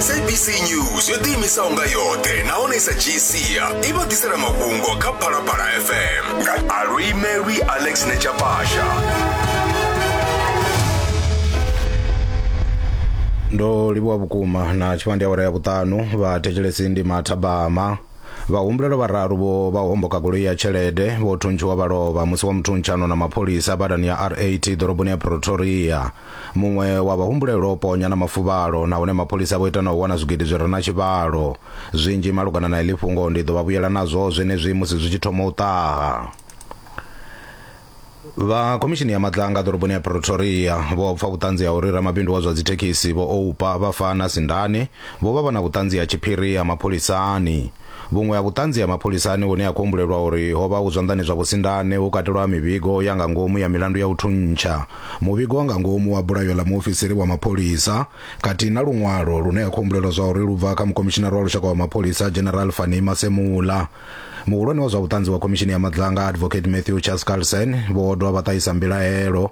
sabc news yo ḓiimisaho nga yoṱhe nahone i sa dzhiisia i vha ḓisela mafhungo kha phalaphala fm Arui Mary Alex Nechapasha. ndo livhuwa vhukuma na tshifhandi awara ya vhuṱanu vhathetshelesi ndi mathabama vhahumbulelo vhararu vho vha homboka goloi ya tshelede vho thuntshiwa vha lovha musi wa muthuntsha ano na mapholisa badani ya rat ḓoroboni ya pretoria Muṅwe wa vhahumbulelwa o ponya na mafuvhalo nahone mapholisa vho ita na u wana zwigidi zwi re na tshivhalo. Zwinzhi malugana na heḽi fhungo ndi ḓo vha vhuyela nazwo zwenezwi musi zwi tshi thoma u ṱaha. Vha Khomishini ya Maḓanga ḓoroboni ya Pretoria vho pfa vhuṱanzi ha uri ramabindu wa zwa dzithekhisi Vho Oupa Bafana Sindane vho vha vha na vhuṱanzi ha tshiphiri ha mapholisani. Vhuṅwe ha vhuṱanzi ha mapholisani hune ha khou humbulelwa uri ho vha hu zwanḓani zwa vhusindane hu katelwa mivhigo ya nga ngomu ya milandu ya u thuntsha, muvhigo wa nga ngomu wa bulayo ḽa muofisiri wa mapholisa khathihi na luṅwalo lune ha khou humbulelwa zwauri lu bva kha Mukhomishinari wa Lushaka wa Mapholisa General Fannie Masemola. Muhulwane wa zwa vhuṱanzi wa Khomishini ya Madzanga Advocate Matthew Chaskalson vho dovha vha ṱahisa mbilaelo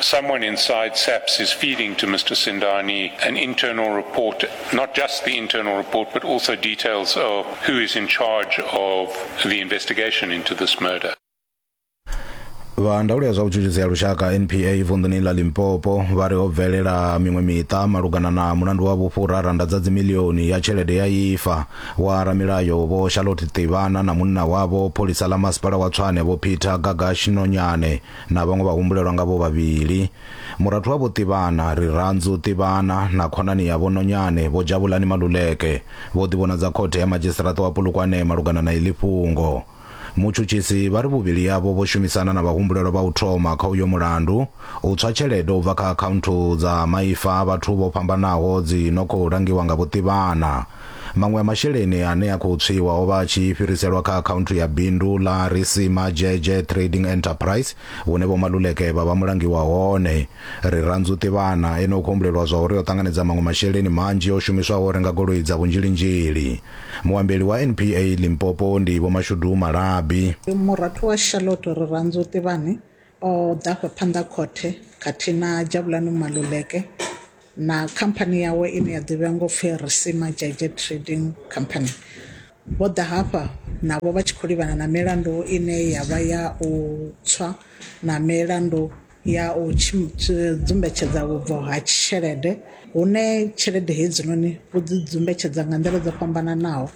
Someone inside SAPS is feeding to Mr. Sindani an internal report, not just the internal report, but also details of who is in charge of the investigation into this murder. vha ndaulo ya zwa vhutshutshisi ya lushaka npa vunḓuni ḽa limpopo vha ri ho bvelela miṅwe miṱa malugana na mulandu wa vhufhura randa dza dzimilioni ya tshelede ya ifa wa ramilayo vho charlotte ṱivhana na munna wavho pholisa ḽa masipala wa tswane vho peter gagash nonyane na vhaṅwe vha humbulelwa nga vho vhavhili. Murathu wa Vho Tivhana, Rirhandzu Tivhana, na khonani ya Vho Nonyane, Vho Javhulani Maluleke, vho ḓivhonadza khothe ya madzhisiṱiraṱa wa Polokwane malugana na iḽi fhungo. Mutshutshisi vha ri vhuvhili havho vho shumisana na vhahumbulelwa vha u thoma kha uyo mulandu u tswa tshelede u bva kha akhaunthu dza maipfa a vhathu vho fhambanaho dzi no khou langiwa nga Vho Tivhana. Maṅwe a masheleni ane a khou tswiwa o vha a tshi fhiriselwa kha akhaunthu ya bindu ḽa Risima Dzhedzhe Trading Enterprise hune Vho Maluleke vha vha mulangi wa hone. Rirhandzu Tivhana ene o khou humbulelwa zwa uri o ṱanganedza maṅwe masheleni manzhi o shumiswaho u renga goloi dza vhunzhilinzhili. Muambeli wa NPA Limpopo ndi Vho Mashudu Malabi. Murathu wa Charlotte Rirhandzu Tivhani o ḓa afha phanḓa ha khothe khathihi na Jabulani Maluleke na khamphani yawe ine ya ḓivhea ngo pfi Risima Jaeger Trading Company, vho ḓa hafha navho vha tshi khou livhana na milandu ine ya vha ya u tswa na milandu ya u dzumbetshedza vhubvo ha tshelede hune tshelede hedzinoni vho dzi dzumbetshedza nga nḓila dzo fhambananaho.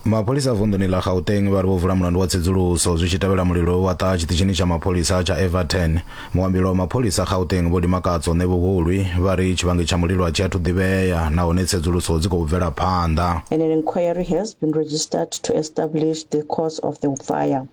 mapholisa vunḓuni ḽa gauteng vha ri vho vula mulandu wa tsedzuluso zwi tshi tevhela mulilo wa ṱaha tshiṱitshini tsha mapholisa tsha everton muambelo wa mapholisa gauteng vho limakatso ṋe vhuhulwi vha ri tshivhangi tsha mulilo a tshi athu ḓivhea nahone tsedzuluso dzi khou bvela phanḓa And an inquiry has been registered to establish the cause of the fire.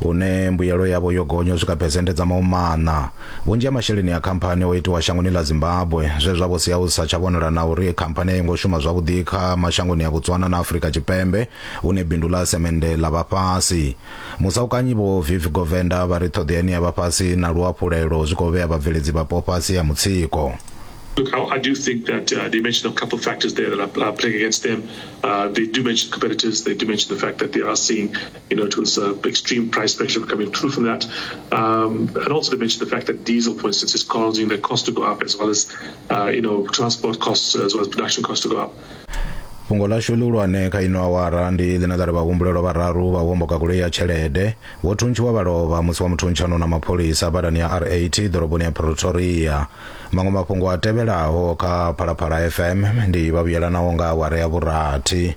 hune mbuyelo yavho yo gonya u swika phesenthe dza maumana vhunzhi ha masheleni a khamphani o itiwa shangoni ḽa zimbabwe zwe zwa vho sia hu sa tsha vhonala na uri khamphani a yo ngo shuma zwavhuḓi kha mashangoni a botswana na afurika tshipembe hune bindu ḽa semende ḽa vha fhasi musaukanyi vho viv govenda vha ri ṱhoḓeani ya vha fhasi na luhafhulelo zwi khou vhea vhabveledzi vhapo fhasi ha mutsiko Look, I, I, do think that uh, they mentioned a couple of factors there that are, are playing against them. Uh, they do mention competitors. They do mention the fact that they are seeing you know, it was uh, extreme price pressure coming through from that. Um, and also to mention the fact that diesel, for instance, is causing the cost to go up as well as, uh, you know, transport costs as well as production costs to go up. fhungo ḽashu ḽihulwane kha ino awara ndi ḽine ḽa ri vhahumbulelwa vhararu vha homboka goloi ya tshelede vho thuntshiwa vha lovha musi wa muthuntshanwo na mapholisa badani ya rat ḓoroboni ya pretoria maṅwe mafhungo a tevhelaho kha phalaphala fm ndi vhavhuyelanaho nga awara ya vhurathi